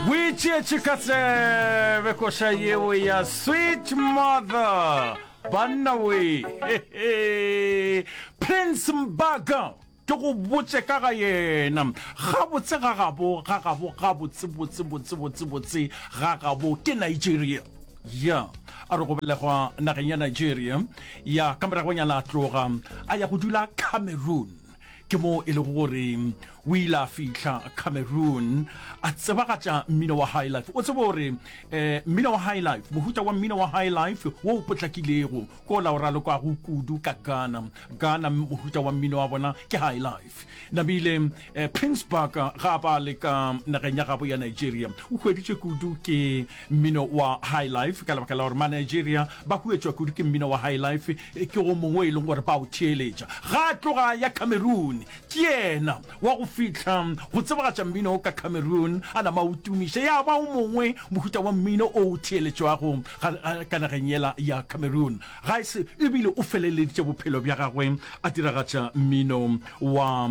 boitšeetše ka tsebe koša yeo ya sweet mother banna we prince mbaga ke go botse ka ga yena gabotse ga gabo ga gabo gabotse botse botse botse botse ga gabo ke nigeria ya a re go belegwa nageng ya nigeria ya ka moragonyana a tloga a ya go dula cameroon ke moo e lego gore o ile a fihla cameroon a tsebagatša mmino wa high life o tsebe gore um eh, mmino wa high life mohuta wa mmino wa high life wo o potlakilego ko la o ralokwago kudu ka ghana ghana mohuta wa mmino wa bona ke high life namile um eh, pinsburg ga ba le ka nageng ya gabo ya nigeria o hweditše kudu ke Mmino wa highlife, ka lebaka la gore Manigeria ba huetšwa kudu ke mmino wa highlife, ke o mongwe e leng gore ba o theeletša. Ga a tloga ya Cameroon, ke yena wa go fihla go tsebagatša mmino o ka Cameroon, a nama a o tumiša, ya ba o mongwe mohuta wa mmino o o theeletšwago ka nageng yela ya Cameroon. Ga e se e bile o feleleditše bophelo bja gagwe a diragatša mmino wa